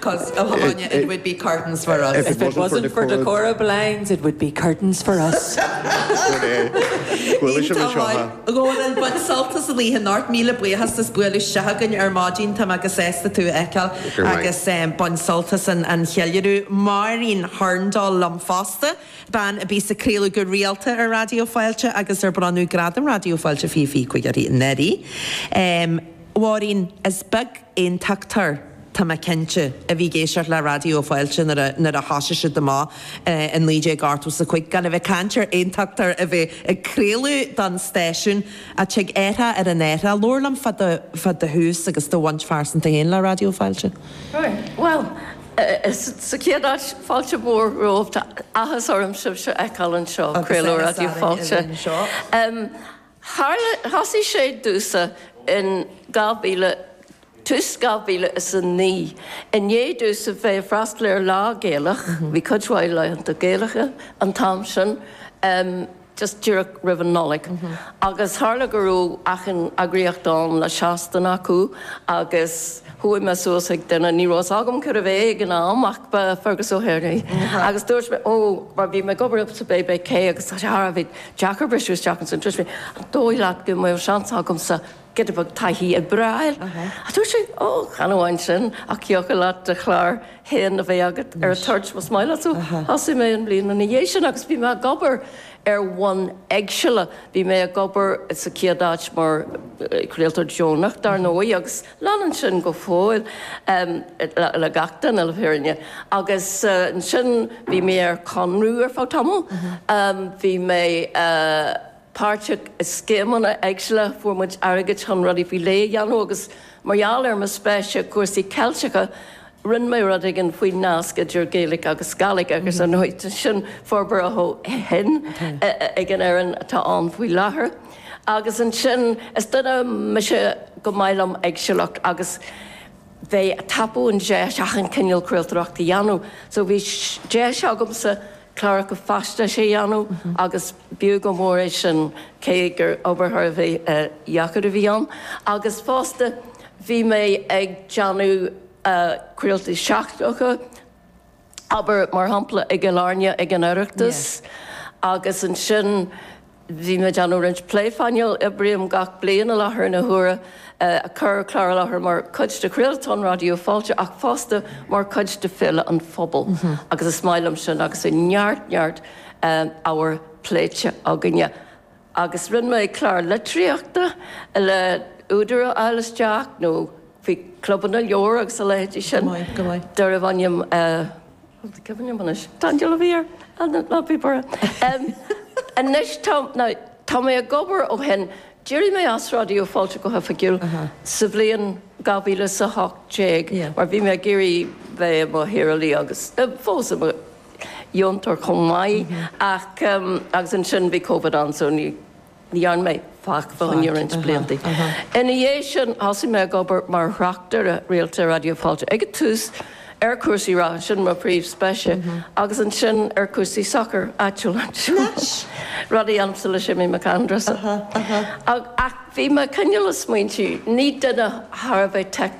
'Cause, oh Áine, it would be curtains for us. If it wasn't for the Cora blinds, it would be curtains for us. Sin é. Bhuel, fáilte romhat anseo a Rónán, bain sult as an oíche. Go raibh míle buíochas as bualadh isteach againn ar maidin. Tá muid sásta tú a fheiceáil Go raibh maith. agus em, bain sult as an, an cheiliúradh. Máirín Hurndall liom fosta, bean a bhí ag craoladh go rialta ar Raidió Fáilte agus ar bronnadh gradam Raidió Fáilte fiche fiche cúig uirthi. Em, Mháirín, is beag Aontachtóir, tá mé cinnte, a bhí ag éisteacht le Raidió Fáilte nuair a thosaigh siad amach i 1985, gan a bheith ag caint ar Aontachtóir a bheith ag craoladh don stáisiún, a dtig athrú ar an áit. Labhair liom fá do thús agus do bhaint phearsanta féin le Raidió Fáilte. Bhuel, sa chéad áit, fáilte mhór romhaibh. Tá athas orm sibh a fheiceáil anseo, craoladh Raidió Fáilte. Tharla, thosaigh sé i dtús in 2000, tús 2009, i ndiaidh domhsa a bheith ag freastal ar lá Gaelach, bhí cuid mhaith laethanta Gaelacha an t-am sin, just díreach roimh an Nollaig, agus tharla go raibh achan eagraíocht ann le seastain acu agus chuaigh mé suas chuig duine, ní raibh fhios agam cérbh é ag an am ach ba Fergus O'Hare é, agus dúirt mé, oh, mar bhí mé ag obair sa BBC agus tá sé thar a bheith deacair briseadh isteach ins an BBC. An dóigh leat go mbeadh seans agamsa giota beag taithí a fháil? Dúirt sé, Ó, chan amháin sin, ach thiocfadh leat do chlár féin a bheith agat ar an toirt, más maith leat. So thosaigh mé an bhliain ina dhiaidh sin agus bhí mé ag obair ar bhonn éagsúla. Bhí mé ag obair sa chéad áit mar chraoltóir deonach, dar ndóigh, agus. Leanann sin go fóill le gach duine, le fírinne. Agus ansin bhí mé ar conradh ar feadh tamall. Bhí mé páirteach i scéimeanna éagsúla, fuair muid airgead chun rudaí faoi léith a dhéanamh agus mar gheall ar mo spéis i gcúrsaí Ceilteacha, Rinne mé rud éigin faoin nasc idir Gaeilge agus Gàidhlig agus anois tá sin forbartha ó shin ag an fhoireann atá ann faoi láthair agus ansin is duine mise gur maith liom éagsúlacht agus bheith ag tapú an deis achan cineál craoltóireachta a dhéanamh so bhí deis agamsa cláracha faisnéise a dhéanamh agus b'fhiú go mór é sin cé gur obair thar a bheith deacair a bhí ann agus fosta bhí mé ag déanamh craoltaí seachtracha, abair mar shampla i gCill Airne ag an Oireachtas agus ansin. Bhí mé ag déanamh roinnt plé phainéil. Oibrím gach bliain i láthair na huaire, ag cur clár i láthair mar chuid de chraoltán Raidió Fáilte ach fosta mar chuid de Féile an Phobail agus is maith liom sin agus bhí neart neart ábhar pléite againne. Agus rinne muid clár litríochta le údair a ligean isteach nó faoi chlubanna leabhar agus a leithéidí sin. Go maith, go maith. D'oirfeadh ainm Tá cuimhne agam anois. Tá an dealbh thiar in Lapaí Bura. Anois tá mé ag obair ó shin. D'éirigh mé as Raidió Fáilte go hoifigiúil sa bhliain 2018 mar bhí mé ag iarraidh bheith i mo shaorálaí agus fós i mo dheontóir chomh maith ach, agus ansin bhí Covid ann so ní, dhearn mé faic fá choinne roinnt blianta. Ina dhiaidh sin, thosaigh mé ag obair mar thráchtaire rialta i Raidió Fáilte, ag an tús ar chúrsaí reatha, sin mo phríomhspéis, agus ansin ar chúrsaí sacair áitiúil. Nice. Rud a dhéanaimse le Séimí Mac Aindreasa. Aha, aha. Ach bhí mé ag cineál ag smaointiú, ní duine thar a bheith.